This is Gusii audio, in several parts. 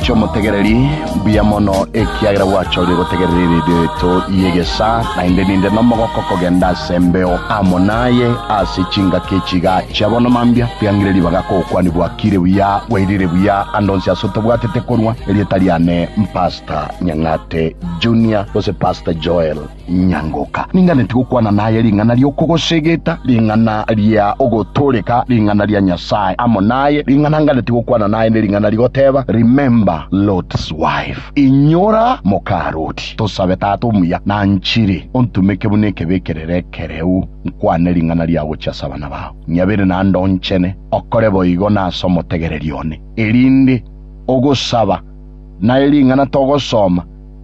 Chiomotegereri mbuya mono, ekiagera gwachorire gotegerera eredio yaito y'egesaa, naende ninde nomogoko kogenda ase embeo amo naye ase chingaki echi iga chia bono mambia. Riang'ire ribaga kogokwania bwakire buya, bwairire buya ande onsi ase otobwatete korwa. Erieta riane mPastor Nyang'ate Junior gose Pastor Joel. Nyangoka, ninganeti gokwana naye ring'ana ri'okogosegeta, ring'ana ria ogotooreka ring'ana ria Nyasae amo naye, ring'ana nganeti gokwana naye nering'ana rigoteba, Remember Lot's wife, Inyora moka Loti. Tosabe, Tata omuya, nanchire, ontumeke buna ekebekerero ekereu, nkwane ring'ana ria gochia ase abana bao. Nyabere na ndonchene, okore boigo na ase omotegereri one, erinde ogosaba naye ring'ana togosoma,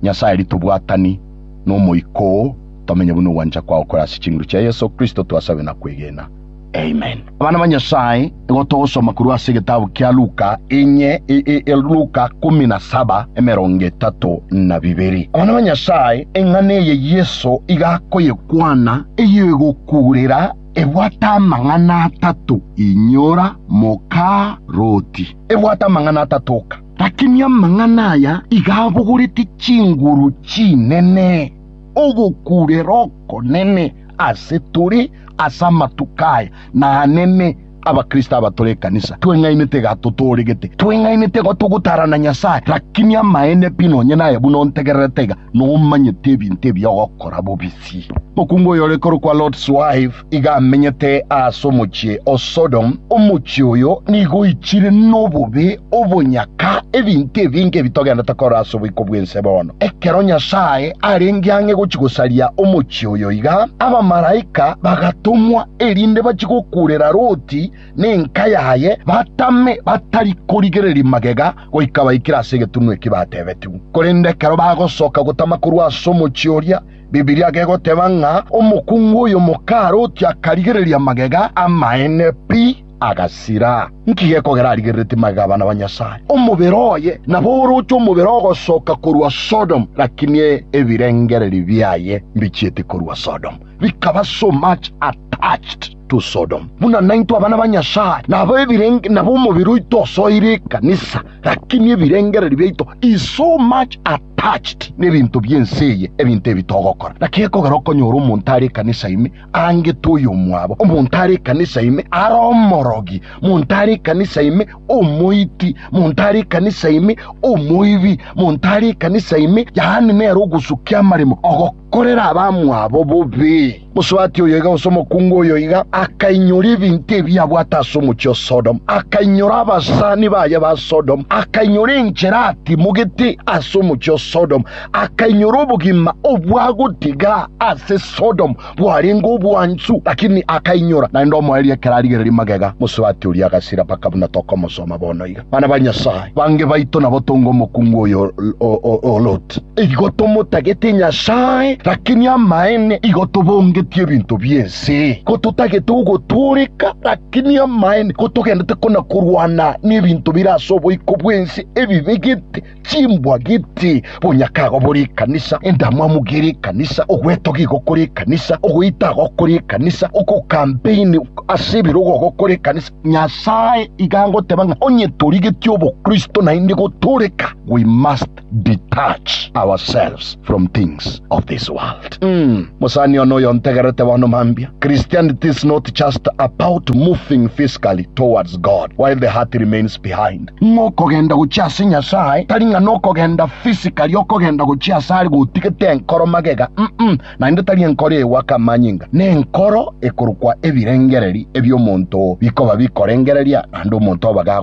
Nyasae ritobwatani. n'Omoika oo, tomenye buna ogwancha kwao kore ase chinguru chia Yeso Kristo, twasabe na kwegena. Amen. Abana ba Nyasae, igo togosoma korwa ase egetabu kia Luka, enye, e, e, e, Luka kumi na saba, emerongo etato na bibere. Abana ba Nyasae, eng'ana eye Yeso iga akoyekwana eyegokuurera ebwate amang'ana atato, inyora, moka, roti. Ebwate amang'ana atato oka. Lakini amang'ana aya iga abogorete chinguru chinene, ogokuurera okonene ase tore ase amatuko aya, naanene Abakristo abatore ekanisa tweng'ainete iga totooregete. Tweng'ainete igo togotaarana Nyasae, lakini amaene pi nonye naye buna ontegererete iga. nomanyete ebinto ebi ogokora bobisi. Mokungu oyore korokwa Lot's wife iga amenyete aase omochie o Sodom, omochie oyo nigo oichire nobobe, obonyaka, ebinto ebinge ebi togendete korora ase oboiko bw'ense bono. Ekero Nyasae arenge ang'e gochia gosaria omochie oyo iga, abamalaika bagatomwa erinde bachie gokuurera Loti, nenka yaye batame batari korigereria magega goika baikire ase egetunwa eki batebetigwe. Korende ekero bagosoka gotama korwa ase omochie oria, Bibilia gegoteba ng'a omokungu oyo mokaroti akarigereria magega amaene pi, agasira. Nki gekogera arigereretie magega abana ba Nyasae? Omobere oye nabo oroche omobere ogosoka korwa Sodomu, lakini ebirengererio biaye mbichieti korwa Sodomu, bikaba so much attached. to Sodom. Buna naintwe abana ba Nyasae nabo ebirenge nabo omobere oito osoire ekanisa, lakini ebirengererio biaito is so much attached n'ebinto bi'ense eye, ebinto ebi togokora. Naki gekogera okonyore omonto are ekanisa ime aangete oyomwabo, omonto are ekanisa ime are omorogi, monto are ekanisa ime omoiti, monto are ekanisa ime omoibi, monto are ekanisa ime, yaani nere ogosukia amaremo, ogok Korera abamwabo bobe. Mosubati oyoiga gose omokungu oyoiga akainyora ebinto ebi abwate ase omochie o Sodomu, akainyora abasani baye ba Sodomu, akainyora enchera atimogete ase omochie o Sodomu, akainyora obogima obwagotiga ase Sodomu bwarenge obwansu, lakini akainyora naende omoerio ekero arigereria magega. Mosubati oria agasira mpaka buna tokomosoma bono iga. Bana ba Nyasae, bange baito nabo tonge omokungu oyo o Loti. Igo tomotagete Nyasae, lakini amaene igo tobongetie ebinto bi'ense. Ko totagete ogotooreka, lakini amaene ko togendete kona korwana nebinto bire ase oboiko bw'ense ebibegete chimbwa gete, bonyakago bore ekanisa, endamwamu gere ekanisa, ogwetoga igo kore ekanisa, ogoita igo kore ekanisa, ogokampeini ase ebirogo igo kore ekanisa. Nyasae iga agoteba ng'a onye torigetie obokristo naende gotooreka, we must detach ourselves from things of this world. Umm mosani one oyo ntegerete bono mambia, Christianity is not just about moving physically towards God while the heart remains behind. Ng'a okogenda gochia ase Nyasae tari ng'a nokogenda physically okogenda gochia ase are gotigete enkoro magega umm naende tari enkoro egoaka amanyinga ne enkoro ekorokwa ebirengereri ebio omonto bikoba bikorengereria naende omonto oba ga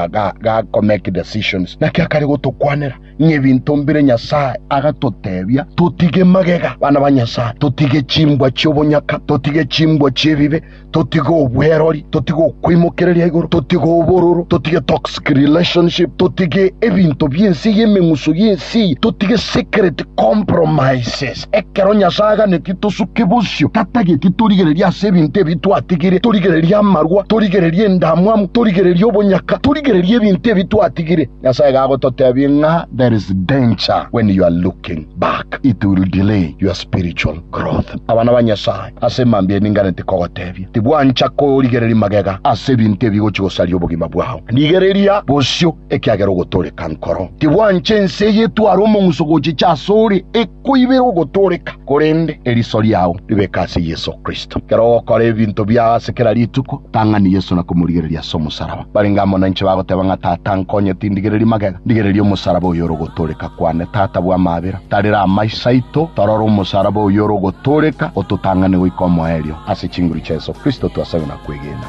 ga ga make decisions naki akare gotokwanera ng'ebinto mbire Nyasae agatotebia totige magega bana ba Nyasae, totige chimbwa chi'obonyaka, totige chimbwa chi'ebibe, totige obwerori, totige okoimokereria igoro, totige obororo, totige toxic relationship, totige ebinto bi'ense eye, emeng'uso y'ense eye, totige secret compromises. Ekero Nyasae aganeti tosuke bosio, tatageti torigereria ase ebinto ebi twatigire, torigereria amarwa, torigereria endamwamu, torigereria obonyaka, torigereria ebinto ebi twatigire. Nyasae iga agototebia ng'a there is danger when you are looking back, it will delay your spiritual growth. Abana ba Nyasae, ase mambia ninganeti kogotebia, tibwancha korigereria magega ase ebinto ebigochi gosaria obogima bwao. Rigereria bosio ekiagera ogotooreka nkoro. Tibwancha ense eye etware omong'uso gochicha asore, Koiberwa ogotooreka, korende eriso riao ribeke ase Yeso Kristo. Ekero ogokora ebinto biao ase kera rituko, tang'ani Yeso na komorigereria ase omosaraba. Barenge amo nainche bagoteba ng'a, Tata, nkonye tindigereria magega, ndigererie omosaraba oyore ogotooreka kwane. Tata, bua amabera, tarera amaiso aito torore omosaraba oyore ogotooreka, ototang'ane goika omoerio. Ase chinguru chia Yeso Kristo twasabire na kwegena.